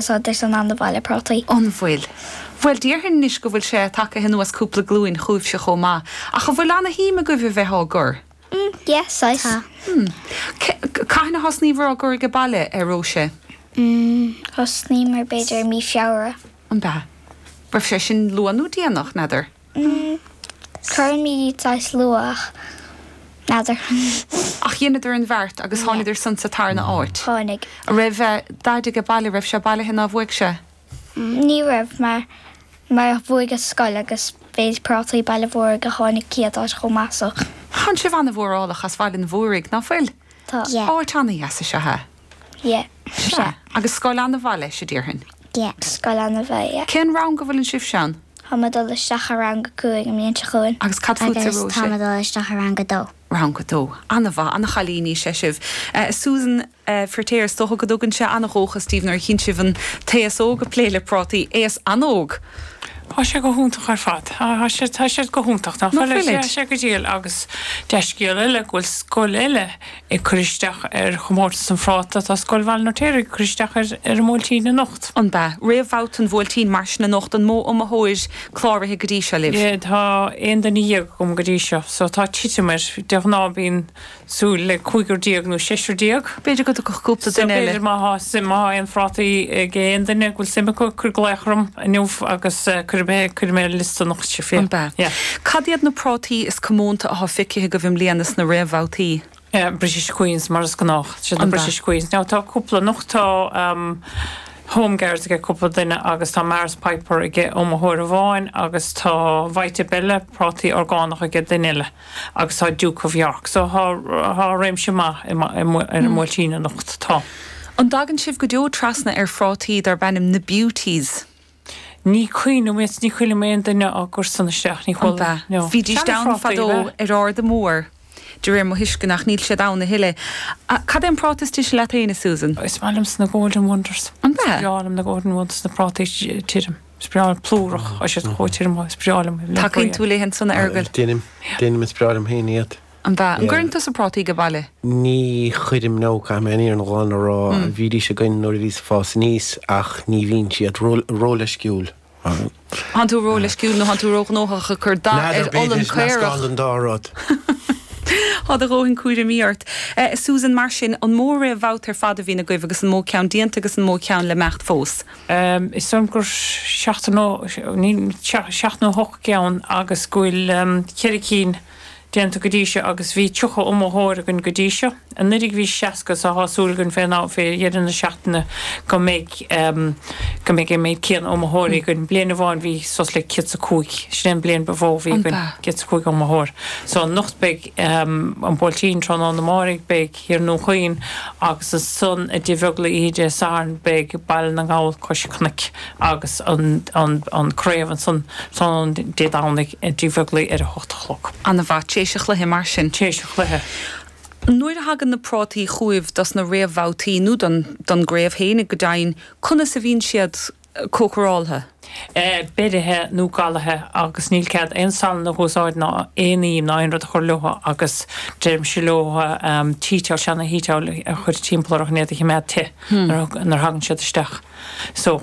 sod ar son an bhaile prátaí. An bhfuil? Bhuel, déarfainn anois go bhfuil sé tagtha anuas cúpla glúin chugaibhse chomh maith, ach an bhfuil ana-shuim agaibh a bheith á gcur? M, Yeah, saghas. Tá. C, Cathain a thosnaíobhair á gcur aige baile, a Róise? M, Thosnaíomar b'fhéidir i mí Feabhra. An b'ea? Raibh sé sin luath nó déanach, n'fheadar? Cuirimíd saghas luath n'fheadar chun. Ach dheineadar an bheart agus tháinidar san sa tarna áit. Tháinig. An raibh daid aige baile, raibh sé bailithe ná bhuaigh sé? Ní raibh mar mar bhuaigh an scoil agus b'iad prátaí Bhaile an Mhúraigh a tháinig céad áit chomh maith so. Thánn sibh ana-mhórálach as Bhaile an Mhúraigh, ná fuil? Tá. Áit ana-dheas is ea é. Yeah. Sea. Agus scoil ana-mhaith leis, a déarfainn. Yeah. Scoil ana-mhaith, yeah. Cén rang go bhfuileann sibhse ann? Tá mé dul isteach ar rang a cúig an bhliain seo chugainn. Agus cad fútsa, Róise? Agus tá mé dul isteach ar rang a dó. Rang a dó. Ana-mhaith. Ana-chailíní is ea sibh. Susan Feirtéar, is dócha go dtugann sé ana-dhóchas daoibh nuair a chíonn sibh an t-aos óg ag plé le prátaí. Aos an-óg! Tá sé go hiontach ar fad. Tá siad go hiontach. Tá sé go diail agus dea-scéal eile go bhfuil scoil eile ag cur isteach ar chomórtas an phráta, tá Scoil Bhaile an Fheirtéaraigh ag cur isteach ar an mBuailtín anocht. An b'ea? Réamhbhabhta an Bhuailtín, mar sin, anocht. An mó iomaitheoir cláraithe go dtí seo libh? Tá aon duine dhéag agam go dtí seo, so tá titim air. De ghnáth bíonn súil le cúigear déag nó seisear déag. B'fhéidir go dtiocfadh cúpla duine eile. So b'fhéidir má tá aon phrátaí ag aon duine go bhfuil suim acu ag cur glaoch orm. inniu agus cuirfidh mé cuirfidh mé ar liosta na hoíche fé. An b'ea? Yeah. Cad iad na prátaí is comónta athá feicithe agaibh i mbliana sna réamhbhabhtaí? Yeah, British Queens mar is gnách. Siad na An b'ea? British Queens. Now tá cúpla anocht, tá ehm Home Guards ag cúpla duine agus tá Maris Piper ag iomaitheoir amháin agus tá Vita Bella, prátaí orgánach ag duine eile. agus tá Duke of York. So tá réimse maith ar an mBuailtín anocht. Tá. An dtagann sibh go deo trasna ar phrátaí darb ainm na Beauties? Ní chuala, ní chuala mé aon duine á gcur san isteach, ní chuala. An ea? No. Bhídís ann fadó ar Arda Mór de réir mo thuisceana ach níl siad ann a thuilleadh. Cad é an práta is dise leat fhéin a Susan? Is maith liomsa na Golden Wonders. An ea? Is breá liom na Golden Wonders, na prátaí tirim. breá plúrach, Tá siad chomh tirim, is breá liom féin. Tacaíonn tú léi ansan a Fhergail? Deinim. Deinim, is breá liom féin iad. An b'ea? An gcuireann tusa prátaí age baile? Ní chuirim, no. Caithfidh mé an fhírinne ghlan a rá. Bhídís againn nuair a bhíos ag fás aníos ach ní bhíonn siad róleisciúil. Thánn tú róleisciúil nó thánn tú róghnóthach ag cur dath ar olann caorach. N'fheadar, b'fhéidir, meascán den dá rud. Tá do dhóthain cúraimí ort. Susan, mar sin, an mó réamhbhabhta ar fad a bhíonn agaibh agus an mó ceann déanta agus an mó ceann le himeacht fós? Is dóigh liom gur seacht nó seacht nó hocht gceann agus go bhfuil ceithre cinn déanta go dtí seo agus bhí tríocha iomaitheoir againn go dtí seo. Anuiridh bhí seasca so thá súil againn fé dheireadh na seachtaine go mbeidh go mbeidh an méid céanna iomaitheoirí againn. Bliain amháin bhí suas le céad is a cúig, sin é an bliain ba mhó a bhí againn, céad is a cúig iomaitheoir. So anocht beidh an Buailtín, tráthnóna amáirigh beidh. Thiar i nDún Chaoin, agus ansan i dTigh Bheaglaoi Dé Sathairn beidh Baile na nGall Cois Cnoic agus an Craobh ansan tráthnóna Dé Domhnaigh i dTigh Bheaglaoi ar a hocht a chlog. An-mhaith. Tar éis an chluiche mar sin. Tar éis an chluiche. Nuair a thagann na prátaí chugaibh dos na réamhbhabhtaí nó don gcraobh féin go deimhin, conas a bhíonn siad? cócaráltha. beirithe nó galaithe agus níl cead aon salann a úsáid ná aon im ná aon rud a chur leo agus deirimse leo tea towel, seana-tea towel a chur timpeall orthu chun iad a choimeád te nuair a thagann siad isteach. So,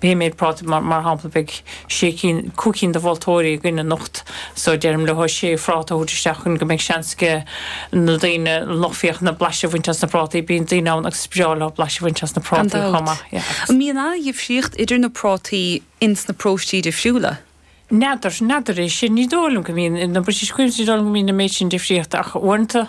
pé méid práta, mar shampla beidh. sé cinn, cúig cinn de mholtóirí againn anocht so deirim leo sé phráta a thabhairt isteach chun go mbeidh seans aige na daoine, an lucht féachana, blaiseadh a bhaint as na prátaí. Bíonn daoine ann agus is breá leo blaiseadh a bhaint as na prátaí chomh maith. Gan dabht. Yeah, agus. An mbíonn an-dhifríocht idir na prátaí ins na paróistí difriúla? N'fheadar, n'fheadar é sin. Ní dóigh liom go mbíonn. I na British Queens ní dóigh liom go mbíonn an méid sin difríochta ach uaireanta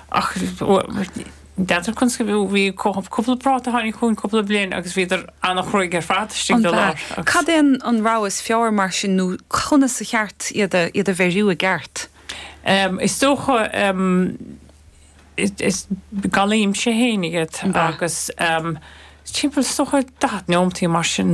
Ach n'fheadar conas go bhí cúpla práta a tháinig chugainn cúpla bliain agus bhíodar an-chruaidh ar fad istigh de lár. Cad é an rogha is fearr mar sin nó conas ba cheart iad a bheiriú i gceart? Is dócha, galaímse féin iad agus timpeall is dócha daichead neomataí nó mar sin.